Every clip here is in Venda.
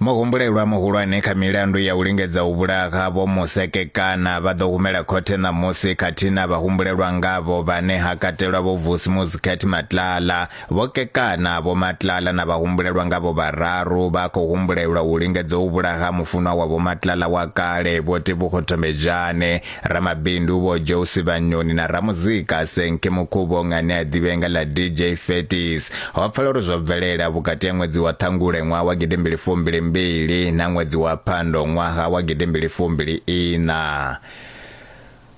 Muhumbulelwa muhulwane kha milandu ya u lingedza u vhulaha Vho Musekekana vha ḓo humela khothe ṋamusi khathihi na vhahumbulelwa ngavho vhane ha katelwa Vho Vusi Muzikhet Matlala, Vho Kekana, Vho Matlala na vhahumbulelwa ngavho vhararu vha khou humbulelwa u lingedza u vhulaha mufunwa wa Vho Matlala wa kale Vho Tebogo Tombejane. Ramabindu vho Joe Sivhanyoni na ramuzika Senke Mukhuvhonga ane a ḓivhea nga ḽa DJ Fetis. Ho pfala uri zwo bvelela vhukati ha ṅwedzi wa Ṱhangule ṅwaha wa gidimbili fumbili mbili na ṅwedzi wa Phando ṅwaha wa gidimbili fumbili ina.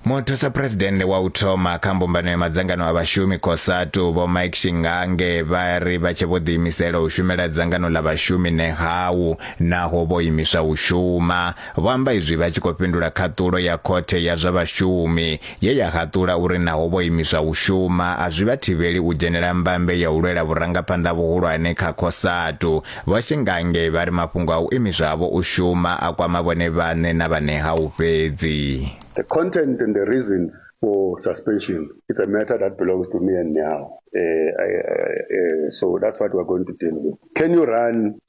Muthusa Presidennde wa u thoma kha mbumbano ya madzangano a vhashumi Cosatu vho Mike Shingange vha ri vha tshe vho ḓiimisela u shumela dzangano ḽa vhashumi ṋehawu naho vho imiswa u shuma Vho amba izwi vha tshi khou fhindula khaṱulo ya khothe ya zwa vhashumi ye ya haṱula uri naho vho imiswa u shuma a zwi vha thivheli u dzhenela mbambe ya u lwela vhurangaphanḓa vhuhulwane kha Cosatu. Vho Shingange vha ri mafhungo a u imiswa havho u shuma a kwama vhone vhaṋe na vha Nehawu fhedzi. The content and the reasons for suspension, it's a matter that belongs to me and Nehawu. Uh, I, I, uh, so that's what we're going to deal with. Can you run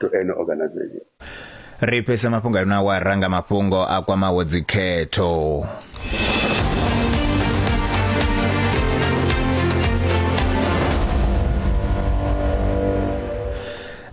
to any organization ri fhese mafhungo ayo na wa ranga mafhungo a kwamaho dzikhetho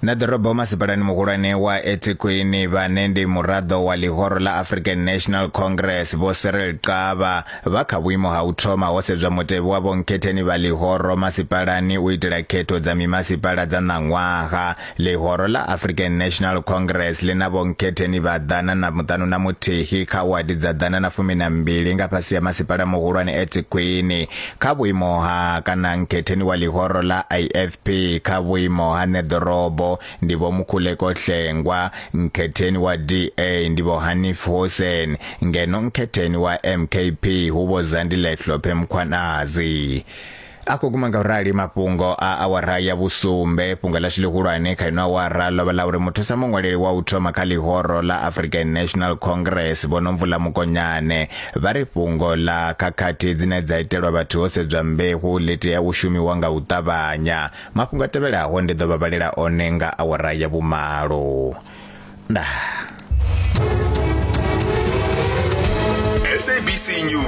na ḓorobo masipalani muhulwane wa etikwini vhane ndi muraḓo wa ḽihoro ḽa african national congress vho serel qava Vha kha vhuimo ha u thoma ho sedzwa mutevhe wa vhonkhetheni vha ḽihoro masipalani u itela khetho dza mimasipala dza ṋaṅwaha. Ḽihoro ḽa African National Congress ḽi na vhonkhetheni vha ḓana na muṱanu na muthihi kha wadi dza ḓana na fumi na mbili nga fhasi ha masipala muhulwane Ethekwini kha vhuimo ha kana nkhetheni wa ḽihoro ḽa IFP kha vhuimo ha ṋeḓorobo ndi vho Mukhuleko Hlengwa, nkhetheni wa DA ndi vho Hanif Hoosen, ngeno nkhetheni wa MKP hu vho Zandile Hlophe Mkhwanazi. A khou guma nga u rali mafhungo a awara ya vhusumbe fhungo ḽashu ḽihulwane kha ino awara ḽo vha ḽa uri muthusa muṅwaleli wa u thoma kha ḽihoro ḽa African National Congress vho Nomvula Mokonyane vha ri fhungo ḽa khakhathi dzine dza itelwa vhathu ho sedzwa mbeu ḽi tea u shumiwa nga u ṱavhanya Mafhungo a tevhelaho ndi ḓo vha vhalela one nga awara ya vhumalo. Ndaa. SABC News.